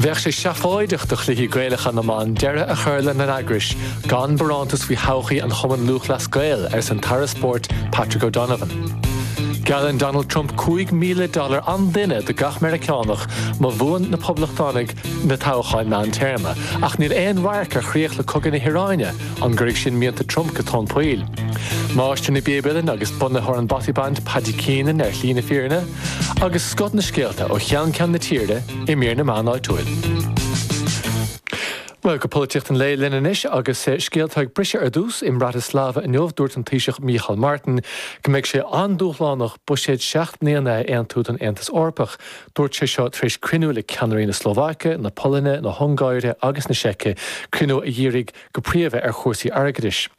Bheadh sé seafóideach do Chluichí Gaelacha na mBan deireadh a chur lena n-eagrais gan barántas faoi thodhchaí an Chumainn Lúthchleas Gael, arsa an tAire Spóirt Patrick O'Donovan. Geallann Donald Trump cúig mhíle dollar an duine do gach Meiriceánach má bhuann na Poblachtánaigh na toghcháin meán téarma, ach níl aon amharc ar chríoch le cogadh na hIaráine, an gcuirfidh sin mianta Trump go tóin poill? Máistir na bpíob uilleann agus bunaitheoir an Bothy Band Paddy Keenan ar shlí na fírinne. agus scoth na scéalta ó cheann ceann na tíre i mír na meán áitiúil. Bhuel, go polaitíocht an lae linn anois agus scéalta ag briseadh ar dtús i mBratislava inniu, dúirt an Taoiseach Micheál Martin go mbeidh sé an-dúshlánach buiséad seacht mbliana a aontú don Aontas Eorpach. Dúirt sé seo tar éis cruinniú le ceannairí na Slóvaice, na Polainne, na hUngáire agus na Seice, cruinniú a dhírigh go príomha ar chúrsaí airgeadais.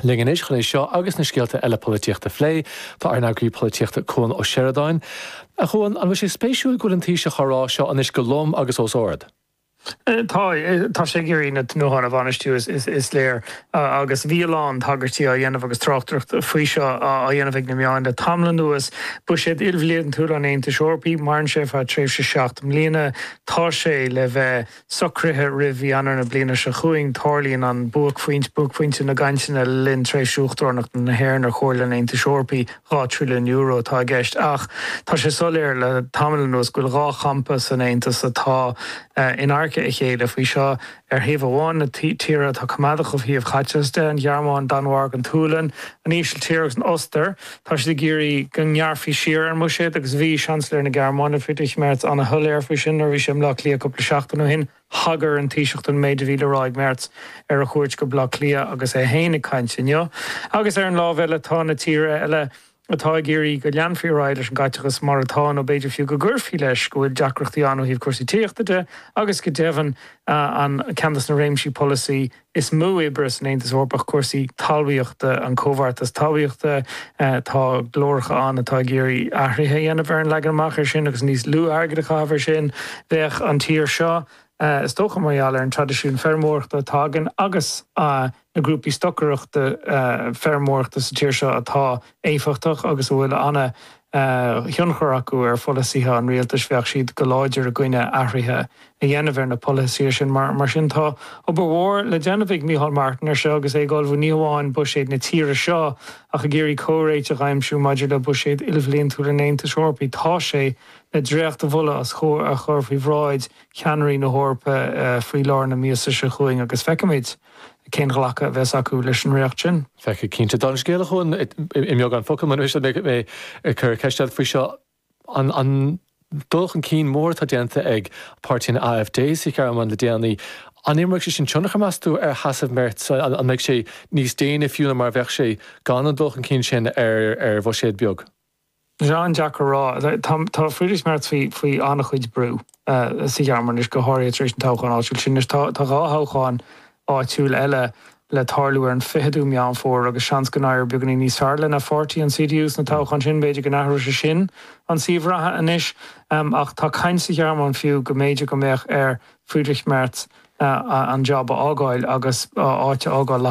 linn anois chun é seo agus na scéalta eile polaitíochta a phlé. Tá ár n-eagraí polaitíochta Cuan Ó Seireadáin. A Chuan, an bhfuil sé spéisiúil go bhfuil an Taoiseach á rá seo anois go lom agus os ard? Tá. Tá sé ag iarraidh na tnútháin a bhainistiú, is léir, agus bhí a lán tagairtí á dhéanamh agus tráchtaireacht faoi seo á dhéanamh ag na meáin le tamall anuas. Buiséad ilbhliantúil an Aontais Eorpaigh, maireann sé ar feadh tréimhse seacht mbliana, tá sé le bheith. socraithe roimh mhí Eanáir na bliana seo chugainn, tarlaíonn an buaicphointe, buaicphointe na gcainteanna le linn thréimhse Uachtaranacht na hÉireann ar Chomhairle an Aontais Eorpaí. Dhá thrilliún euro atá i gceist ach tá sé soiléir le tamall anuas go bhfuil dhá champa san Aontas atá in adharca a chéile faoi seo. Ar thaobh amháin, na tíortha atá coimeádach ó thaobh chaiteachais de, an Ghearmáin, an Danmhairg, an tSualainn, an Ísiltír agus an Ostair. Tá siad ag iarraidh go ngearrfaí siar ar an mbuiséad agus bhí Seansailéir na Gearmáine, Friedrich Merz, an-shoiléir faoi sin nuair a bhí sé i mBleá Cliath cúpla seachtain ó shin. Thagair an Taoiseach don méid a bhí le rá ag Merz ar a chuairt go Bleá Cliath agus é féin ag caint inniu. Agus ar an láimh eile tá na tíortha eile atá ag iarraidh go leanfaí ar aghaidh leis an gcaiteachas mar atá nó b'fhéidir fiú go gcuirfí leis, go bhfuil deacrachtaí ann ó thaobh cúrsaí tithíochta de agus go deimhin ceann de na réimsí polasaí is mó oibre san Aontas Eorpach cúrsaí talmhaíochta an Comhbheartas Talmhaíochta. Tá glóracha ann atá ag iarraidh athruithe a dhéanamh ar an leagan amach ar sin agus níos lú airgid a chaitheamh ar sin. Bheadh an tír seo, is dócha mar gheall ar an traidisiún feirmeoireachta atá againn agus na grúpaí stocaireachta feirmeoireachta sa tír seo atá éifeachtach agus a bhfuil thionchar acu ar pholasaithe an rialtais bheadh siad go láidir i gcoinne athruithe a dhéanamh ar na polasaithe sin. Mar sin tá obair mhór le déanamh ag Micheál Martin air seo agus é ag ullmhú ní hamháin buiséad na tíre seo ach ag iarraidh comhréiteach a aimsiú maidir le buiséad ilbhliantúil an Aontais Eorpaigh. Tá sé le dréachtmholadh a chur faoi bhráid cheannairí na hEorpa faoi lár na míosa seo chugainn agus feicfimid. cén glacadh a bheas acu leis an riocht sin. Feicfidh, cinnte. Dhá scéal a chur i mbeagán focal, más féidir, mé ag cur ceist eile faoi seo, an dul chun cinn mór atá déanta ag páirtí an AfD sa Ghearmáin le déanaí, an imreoidh sé sin tionchar, meas tú, ar sheasamh Merz, an mbeidh sé níos déine fiú ná mar a bheadh sé gan an dul chun cinn sin ar bhuiséad beag? Tá sé an-deacair a rá. Tá Friedrich Merz faoi an-chuid brú sa Ghearmáin anois, go háirithe tar éis na toghcháin áitiúla sin. Anois, tá dhá thoghchán áitiúil eile le tarlú ar an 20ú Meán Fómhair agus seans go n-éireoidh beagán níos fearr lena pháirtí, an CDU, sna toghcháin sin. B'fhéidir go n-athróidh sé sin an suíomh reatha anois ach tá caint sa Ghearmáin fiú go mb'fhéidir go mbeadh ar Friedrich Merz an jab a fhágáil agus áit a fhágáil le